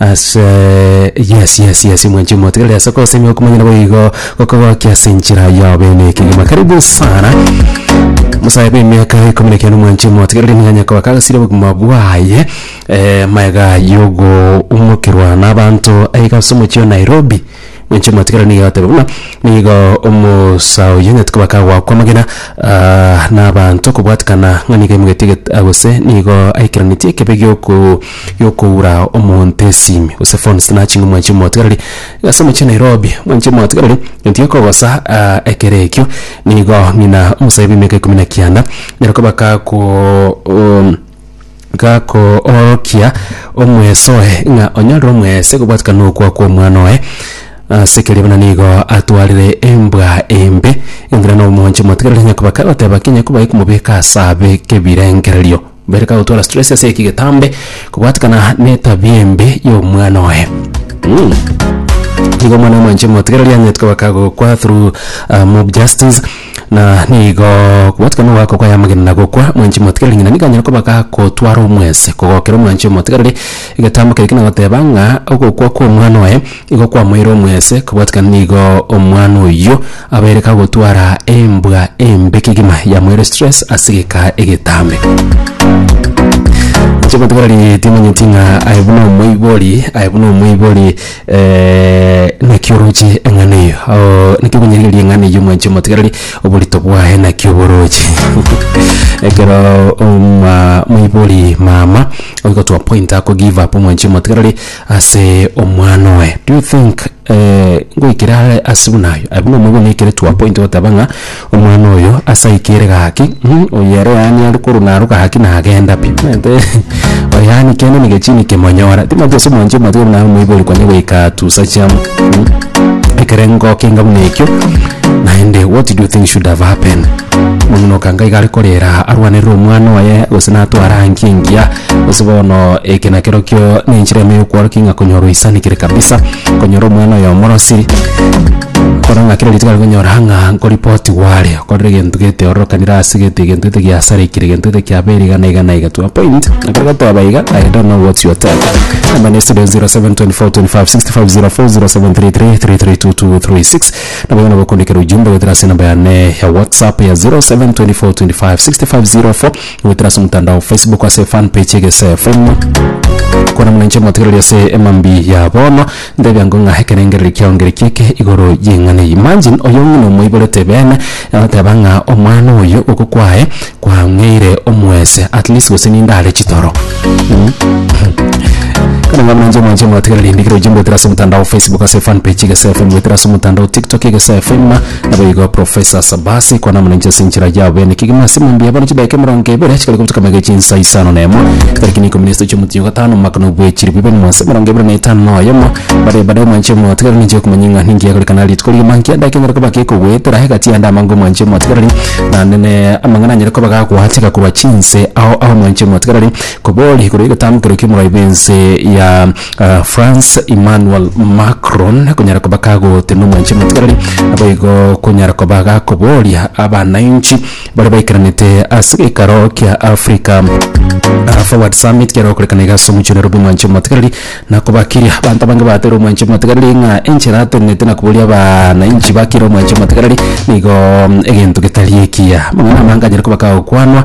Ase yes yes yes mwenche motigerere ase kosemia okomanyana boigo gokogokia ase enchera yao bene ekegima karibu sana musae bw'emiaka ikumi na kiana mwanchi motigerere mwenye kobakangasire obogima bwaye eh, maega yogo umokerwa n'abanto aiga ase omochie o nairobi Inche mwatigara nigo atebe buna nigo omosaa oyio onyaete koba kagoakwa amagena nabaanto kobwatikana ng'a nigo aimogetie eget gose nigo aikeranetie ekebe giokoo giokoura omonto esimi gose phone ase nachi ng'a mwanchi omotigareri iga ase omochie Nairobi mwanchi omotigareri gento gekogosa ekero ekio nigo ng'ina omosae bw'emiaka ikomi na kianda nyare koba kagoo. gakoorokia omweso oye ng'a onyarire omwese kobwatikana nokwa kw'omwana oye. Ase keria buna nigo atwarire embwa embe, enkina na omonche motigarire nyakoba kagoteba ki nyakoba aye komobeka ase abe kebirengererio. Bere kagotwara stress ase eki getambe kobwatikana netabia embe y'omwana oye. Mh. Nigo omwana omonche motigarire anyetwe baka gokwa through mob justice. Na nigo kobwatikana ogwako kwayamagena na gokwa mwanchi omotigareri ng'ina nigo anyare koba gakotwara omwese kogokera omwanchi omotigareri. Egetambo keri kenagoteba ng'a ogokwa kw'omwana oye nigo kwamoeire omwese, kobwatikana nigo omwana oyio abaire kagotwara embwa embe kegima yamoeire stress ase egeka egetambe. Inche omotigareri timanyeti ng'a aye buna omoibori, aye buna omoibori. naki oroche eng'ana eyio? Oo, naki okonyarigereria eng'ana eyio mwanchi omotigarari? Oborito bwaye naki oboroche? Ekero oma- moibori mama oigotwa point ako give up mwanchi omotigarari ase omwana oye, do you think ngoikere are ase buna aye? Aye buna omoibori naikere to a point ogoteba ng'a. Omwana oyo ase aike ere gaki, mm, oyere yaani are korwa naro gaki nagenda pi. Omanyete oyo yaani kende na egechiini kemonyora. Timanyeti ase omwancho omatiga buna amoibori konya goika atusa chiamo, mm, ekerengo keinga buna ekio, naende what do you think should have happened? Omong'ina okanga iga are korera arwanerere omwana oye gose natware aa nki engiya, gose bono eke nakerokio nenchera ime yokworokia ng'a konyorwa oisanigire kabisa. konyora omwana oyo omorosiri, kore ng'a kera rituko arikonyora ng'a nkoripotigwa are, okorire egento geteorokanire ase gete egento gete giasarekire, egento gete kiabeire iga na iga na iga to a point, ekero gotoba iga I don't know what you are telling me. Namba ne estudio 0724256504,733332236, nabo igo nabo okondikera ujumbe goetera ase enamba yane ya whatsapp ya 0724256504. Goetera ase omotandao o Facebook ase fan page Egesefu. Kwana muna inche motegereri ase emambi ya bono, ntebia ango ng'a ekerengereri kiao ngeriki eke igoro y'eng'ana eye. Imagine oyo ng'ina omoiborete bene agoteba ng'a omwana oyo goko kwaye kwang'eire omwese at least gose ninde are chitoro. Kwana muna inche mwanche motegereri endigiri ojimbwetera ase omotandao o Facebook ase fan page Egesefu, mbwetera ase omotandao o TikTok Egesefu. Naboigo Professor Sabasi kwana omonenche ase enchera yao bene kegima ase emambia bono chidaeka emerongo ebere chikare gotuka magega chinsa isano na emo tariki na ikomi na isatu chiomwezi o gatano omwaka na obwechiri bibere na mwansa emerongo ebere na etano na oyomo bare bade omwanche omotigareri ninche okomanya ing'a ninki yagorekana rituko rigima nki edaika enyare koba gekogoetera egati yande amange omwanche omotigareri naende ne amang'ana anyare koba gagwateka korwa chinse ao ao omwanche omotigareri kobori korwa egetambukero kiomoroibwo ense ya Frans Emmanuel Macron konyara koba kagoote na omwanchani otigarari, naboigo konyara koba gakoboria abanainchi baria baikaranete ase geikaro kia Africa Forward Summit kiare gokorekana iga ase omochie o Nairobi omwanchani omotigarari na kobakiria. Abanto abange batebirie omwanchani omotigarari ng'a enchera atenenete na koboria abanainchi bakiire omwanchani omotigarari nigo egento getari ekiya. Amang'ana amange anyare koba kagokwanwa.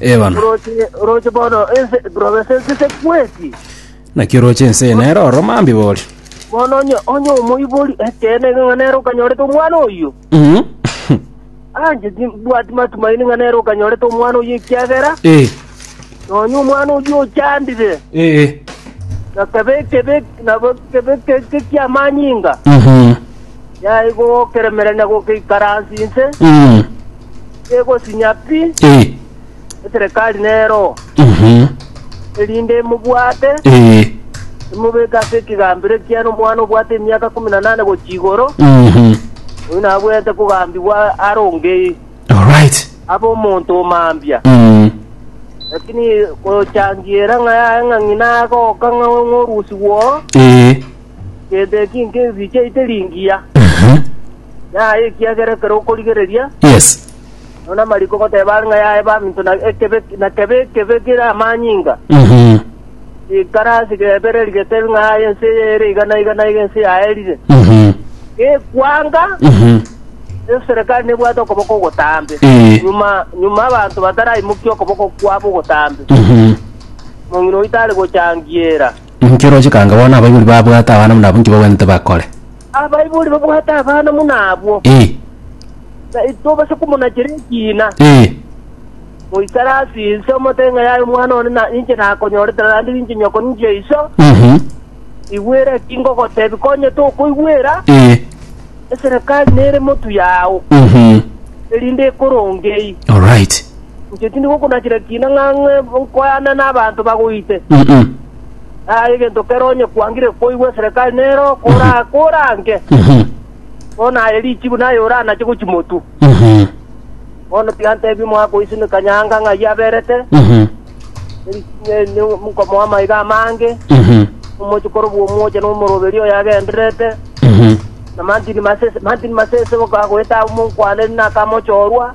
Ebana. Oroche, oroche bono ense, province ense se kweti. Naki oroche ense eye nere oro mambi boria. Bono onye, onye omoibori ekeene iga ng'a nere okanyorete omwana oyio. Mhm. Anje timbwati matumaini ng'a nere okanyorete omwana oyio ekiagera Eh, nonye omwana oyio ochandire. eh, eh. Nakabekebek, nabekebekeke kiamanyinga. Mhm. yaigokera-merania gokeikaransi inse, Mm. egosinya pi, Eh. eserekari nero, Mhm. erinde emobwate, Eh. emobeke ase ekegambero ekiane omwana obwate emiaka ikomi na nane gochia igoro, Mhm. oyo nabwenerete kogambigwa are ongei, All right. abe omonto o mambia. Mm. Lakini gochangiera ng'a yaye ng'a ng'ina agoka ng'a ng'orusigwa oo, Eh. Gento eki nkinsicheite ringiya, Aha. yaye, ekiagera ekero okorigereria, Yes. nonya namariko goteba are ng'a yaye baminto na ekebe na kebe ekebe kere amanyinga. Aha. Ekara ase gebere rigetebe ng'a yaye ense eye ere iga na iga na iga ense yaerire. Aha. Gekwanga, Aha. eserekari nebwate okoboko ogotambe. Eh. Nyuma nyuma abanto bataraimokia okoboko kwabo ogotambe. Aha. Mong'ina oito are gochangiera. Inki roche kanga bono abaibori babwate abana buna abwo inki bagwenerete bakore? Abaibori babwate abana buna abwo, Ee. tari tobasa komonachera ekiina. Ee. Moisare ase inse, omote ng'a yaye omwana one na inche nakonyorete, naende inche nyoko ninche iso. Mhm. Igwera eki ngogotebi, konya tokoigwera, Ee. eserekari nere motu yao, Mhm. erinde ekoronge eyio. Alright. inche tindi gokunachera kiina ng'ang'e nkoyane n'abanto bagoite. Naye egento kero onye kwangire koigwa eserekari nero kora- korange, bono aye richibu naye oranache gochimotu. Bono tiantebi mwakoisimeka nyanga ng'ai aberete, eri- ne- ne- nkomoa amaiga amange, omochi korobua omwocha na omoroberi oyo agendererete, na mantini masese mantini masese goka- goeta amo nkwane nakamochorwa,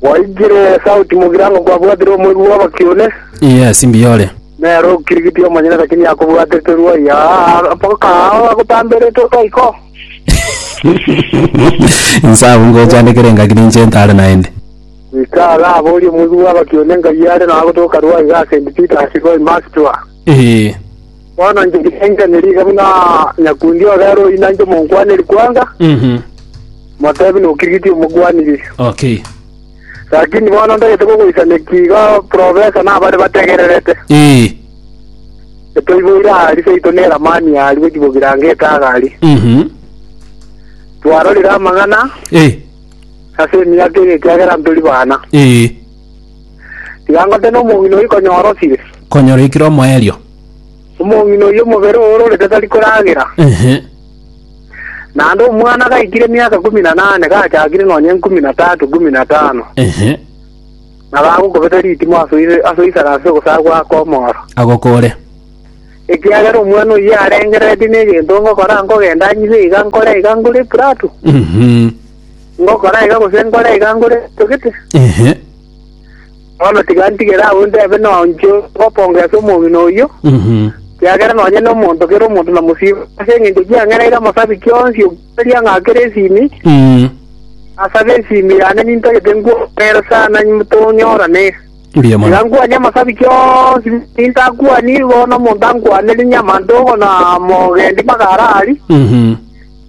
Gwaikire sauti mogirango gwabwatire omoigwa bw'abakiune, Yes, mbiyore. nere okirigitie omonyene lakini akobwatete ruai aa mpaka ao agotamberete otoiko. Inse abwo ngochandekere engaki ninche ntare naende. Goika iga aborie omoigwa bw'abakiune ngai are nagotoka ruai iga St. Peter's ruai Makstua. Ee. Bono inche ndirengerenerie iga buna nyakundi ogere oyino inche omonkwaneri kwanga, Mhm. motebi nokirigiti omokwaniri. Okay. Lakini bono ntagete kogoisania ki iga profesa na abare bategererete. Ee. Etoiboire ahari seito ne eramani ahari gochibogira ange etaga ari. Mhm. Twarorire amang'ana Ee. ase emiaka eye ekiagera ntori bana. Ee. Tiga ngote nomong'ina oyio konyora osire. Konyora ekire omoerio. Omong'ina oyio omobere oororete tari koragera. Ehe. Naende omwana gaikire emiaka kumi na nane gachakire nonya enkumi na tatu kumi na tano. Ehe. Na gagokobeta ritimo ase oise- ase oisara ase ogosaku akomora. Agokore. Ekiagera omwana oyio arengereretie negento ngokora nkogenda nyibe iga nkore iga ngore epurato. Mhm. Ngokora iga gose nkore iga ngore etogete. Ehe. Bono tiga ntigere agwo ntebe nonya inche ngopongesa omong'ina oyio, Mhm. kiagera nonya nomonto kera omonto namosiba, ase eng'encho kiang'ereire amasabiki onsi okoria ng'a akere esimi, Mm. asabe esimi yane nintagete nkwong'ere sana tonyorane. Mbuya mono. Tiga nkwanie amasabiki onsi nintakwani bono omonto ankwanere nyamante ogo na mogendi mpaka arari, Mhm.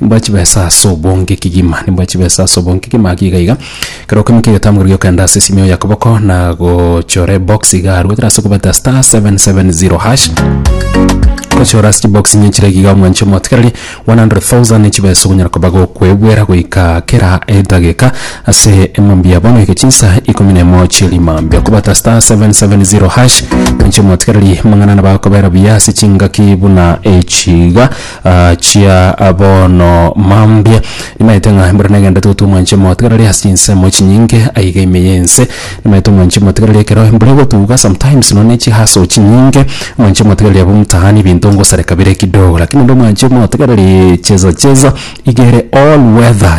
Nimboe chibesa ase obonge kegima, nimboe chibesa ase obonge kegima, gaki iga iga. Kera okoimokia egetamukuru gi'okogenda ase esimio ya koboko, na gochora ebox iga arwe gotera ase kobeta star seven seven zero hash. Gochora ase chibox inye chire iga omwanche omotigereri one hundred thousand chibesa ogonyara koba gokwebwera goika kera edageka ase emambia bono goika chinsa ikomi na emo chia rimambia. Okobeta star seven seven zero hash, mwanche omotigereri amang'ana nabo agokobera buya ase chingaki buna echi iga. Achia bono mambia nimaete ng'a mbere negende totu omwanche motigarari ase chinsemo chinyinge aiga ime y'ense nimaete omwanche motigarari ekero mbere gotuga sometimes nonye ne chihaso chinyinge omwanche motigarari abwo mtaani ebinto ngosareka bire kidogo lakini nonye omwanche motigarari cheza cheza iga ere all weather.